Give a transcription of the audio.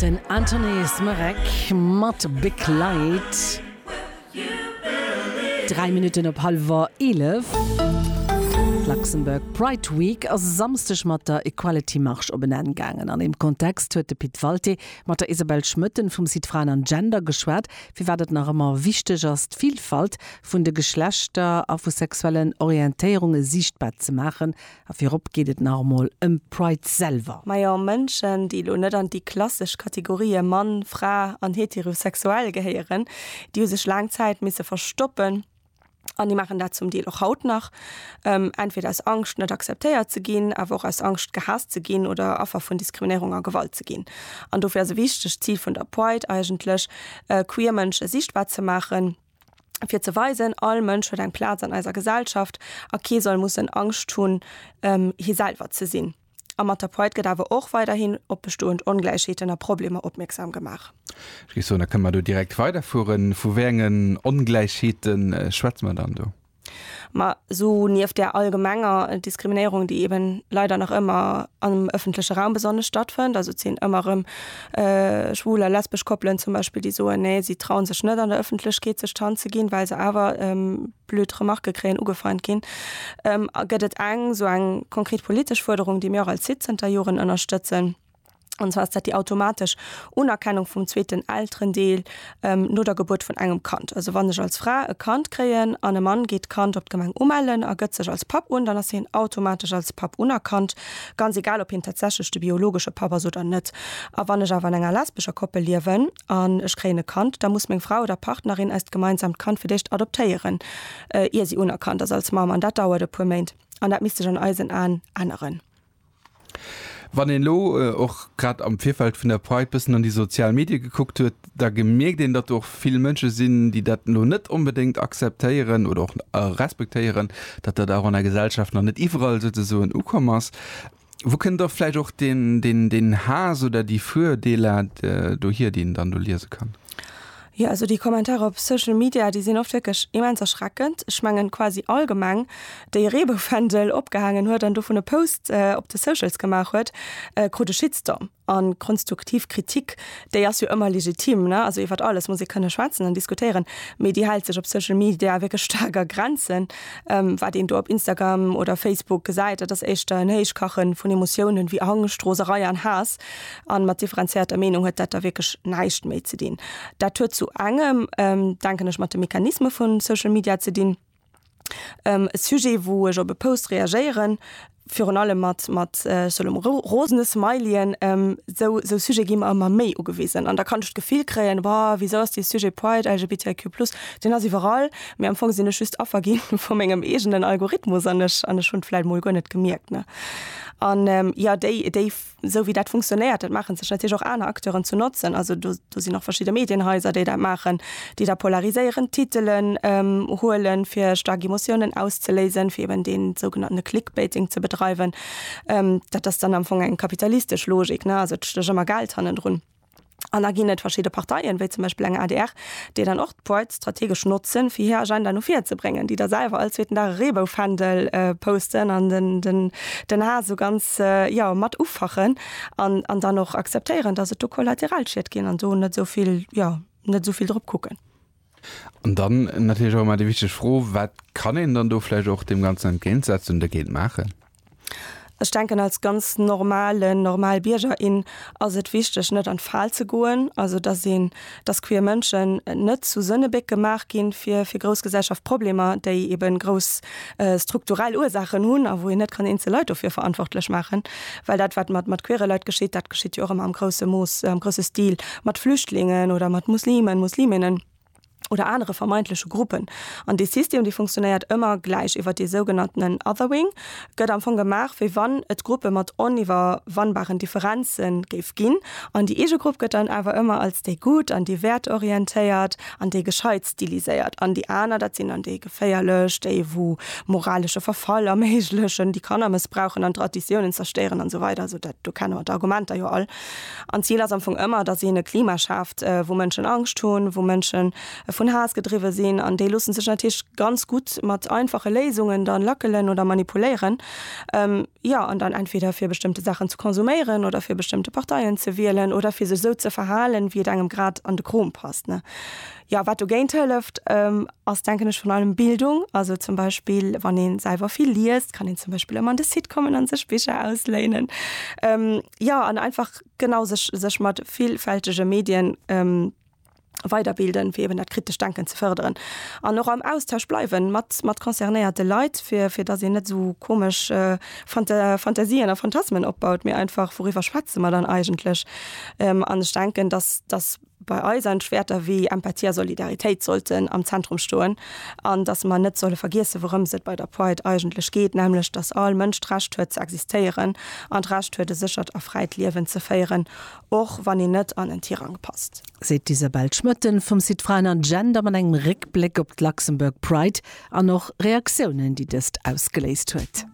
Den Anthony Smerek mat Big Light, 3 Minutten op hallwer 11. D'Luxembourg Pride Week ass e Samsdeg mat der Equality Marche op en Enn gaangen. An deem Kontext huet de Pit Walté mat der Isabelle Schmoetten vum Site Fraen an Gender geschwat, firwat et nach ëmmer wichteg ass, d'Villfalt vun de Geschlechter a vu sexuellen Orientéierunge siichtbar ze maachen A virop geet et nach emol ëm Pride selwer. Majo, Mënschen, déi elo net an déi klassesch Kategorië Mann, Fra an heterosexuell gehéieren, déi hu sech laang Zäit misse verstoppen, an déi maachen dat zum Deel och haut nach, entweder aus Angscht, net akzeptéiert ze ginn, awer och aus Angscht, gehaasst ze ginn oder Affer vun Diskriminéierung a Gewalt ze ginn. An dofir ass e wichtegt Zil vun der Pride eigentlech, queer Mënsche sichtbar ze maachen, fir ze weisen, all Mënsch huet eng Plaz an eiser Gesellschaft a kee soll mussen Angscht hunn, hie selwer ze sinn. Am Matapoit gëtt awer och weiderhin op bestoend Ongläichheeten a Problemer opmierksam gemaach. Ech géif soen, da kënne mer do direkt weiderfueren. Vu wéi engen Ongläichheete schwätze mer dann do? Ma esou nieft där allgemenger Diskriminéierung, déi eben leider nach ëmmer am ëffentleche Raum besonnesch stattfënnt, also et sinn ëmmer erëm schwul a lesbesch Koppelen zum Beispill, déi soen, nee, si trauen sech net an der Ëffentlechkeet sech d'Hand ze ginn, well se awer blöd Remarke kréien, ugefeint ginn, gëtt et eng esou eng konkret politesch Fuerderung, déi mir och als Site zënter Joren ënnerstëtzen, an zwar ass dat déi automatesch Unerkennung vum zweeten Elterendeel no der Gebuert vun engem Kand. Also wann ech als Fra e Kand kréien an e Mann geet d'Kand op d'Gemeng umellen a gëtt sech als Papp un, dann ass hien automatesch als Papp unerkannt, ganz egal ob hien tatsächlech de biologesche Papp ass oder net. A wann ech awer an enger lesbescher Koppel liewen an ech kréien e Kand, da muss meng Fra oder Partnerin eist gemeinsamt Kand fir d'éischt adoptéieren, ier si unerkannt ass als Mamm, an dat dauert e puer Méint. An dat misst sech an eisen Aen änneren. Wann een elo och grad am Virfeld vun der Pride bëssen an déi sozial Medie gekuckt huet, da gemierkt een, datt do och vill Mënsche sinn, déi dat elo net onbedéngt akzeptéieren oder och respektéieren, datt dat och an der Gesellschaft nach net iwwerall souzesoen ukomm ass. Wou kënnt da vläicht och deen Haass oder déi Virdeeler dohier, déi een dann do liese kann? Jo also déi Kommentarer op Social Media déi sinn oft wierklech immens erschreckend. Ech mengen quasi all Gemeng déi e Reeboufändel opgehaangen huet an dovun e Post op de Socials gemaach huet, krut e Shitstorm. An konstuktiv Kritik déi ass jo ëmmer legitim ne, also iwwert alles muss ee kënne schwätzen an diskutéieren, mee déi hält sech op Social Media wierklech staark a Grenzen. Wat een do op Instagram oder Facebook gesäit, dat ass éischter en Héichkache vun Emotiounen wéi Angscht, Roserei an Haass. An mat differenzierter Meenung huet dat da wierklech näischt méi ze dinn. Dat huet zu engem, denken ech, mat de Mechanisme vu Social Media ze dinn. E Sujet, wou ech op e Post reagéieren, virun allem mat, mat, ech soen elo mol rosene Smileyen, esou, esou Sujete gi mer ëmmer méi ugewisen. An da kann ech d'Gefill kréien, Wa, wisou ass dee Sujet Pride, LGBTIQ plus, deen ass iwwerall, mee am Fong sinn ech just Affer gi vu mengem eegenen Algorithmus an ech, an ech hunn et vläicht emol guer net gemierkt, ne? An, jo, déi, déi. esou wéi dat funktionéiert, dat maache sech natierlech och aner Acteuren zu Notzen. Also do sinn och verschidde Medienhaiser, déi dat maachen, déi da polariséierend Titelen huele fir staark Emotiounen auszeléisen, fir eben dee sougenannte Clickbaiting ze bedreiwen. Dat ass dann am Fong eng kapitalistesch Logik, also et stécht ëmmer Geld hannendrun. An da ginn et verschidde Parteien, wéi zum Beispill eng adr, déi dann och d'Pride strategesch notzen, fir hir Agenda no vir ze bréngen, déi da selwer all zweeten Dag e Reebou-Fändel posten an den Haass esou ganz, jo, mat ufachen an dann och akzeptéieren, dass et do Kollateralschied ginn an do net esou vill, jo, net esou vill drop kucken. An dann natierlech och ëmmer déi wichteg Fro, Wat kann een dann do vläicht och deem Ganzen entgéintsetzen, dergéint maachen? Ech denken als ganz normalen, normal Bierger, in ass et wichteg, net an d'Fal ze goen, also dass een, dass queer Mënschen net zu Sënnebéck gemaach ginn, fir fir grouss Gesellschaftproblemer, déi eben grouss strukturell Ursaachen hunn a wou een net kann eenzel Leit dofir verantwortlech maachen. Well dat, wat mat mat queere Leit geschitt, dat geschitt jo och ëmmer am grousse Mooss, am grousse Stil mat Flüchtlingen oder mat Muslimen, Musliminnen oder anere vermeintleche Gruppen. An dee System, dee funktionéiert ëmmer gläich iwwer dee sougenanntenen Othering, gëtt am Fong gemaach, wéi wann et Gruppe mat oniwwerwannbaren Differenze géif ginn. An déi eege Grupp gëtt dann awer ëmmer als déi Gutt an déi wäertorientéiert an déi gescheit. Stiliséiert. An déi aner, dat sinn dann déi geféierlech, déi wou moralesche Verfall erméiglechen, déi Kanner mëssbrauchen an Traditiounen zerstéieren an sou weider. Also dat do kenne mer d'Argumenter jo all. An d'Zil ass am Fong ëmmer, datt een e Klima schaaft, wou Mënschen Angscht hunn, wou Mënschen vun Haass gedriwwe sinn. An déi loosse sech natierlech ganz gutt mat einfache Léisungen dann lackelen oder manipuléieren, jo. An dann entweder fir bestëmmte Saachen ze konsuméieren oder fir bestëmmte Parteien ze wielen oder fir sech sou ze verhalen, wéi et engem grad an de Krom passt, ne. Ja wat dogéint hëlleft ähm, ass denken ech vun allem Bildung, also zum Beispill wann een selwer vill liest, kann een zum Beispill ëmmer an de Site kommen an sech Bicher ausléinen. Ähm, ja an einfach genau sech sech mat villfältege Medien ähm, weiderbilden, fir eben dat kritescht Denken ze fërderen. An och am Austausch bleiwen mat mat concernéierte Leit, fir fir datt een net esou komesch äh, Fanta Fantasien a Phantasmen opbaut, mee einfach wouriwwer schwätze mer dann eigentlech? Ähm, an ech denken, datt datt bei eisen Wäerter wéi Empathie a Solidaritéit sollten am Zentrum stoen an dass mer net solle vergiessen, wourëms et bei der Pride eigentlech geet, nämlech dass all Mënsch d'Recht huet ze existéieren an d'Recht huet e séchert a fräit Liewen ze féieren, och wann een net an en Tirang passt. Seet d'Isabel Schmoetten vum Site Frauen an Gender mat engem Réckbléck op d'Luxembourg Pride an och Reaktiounen, déi dëst ausgeléist huet.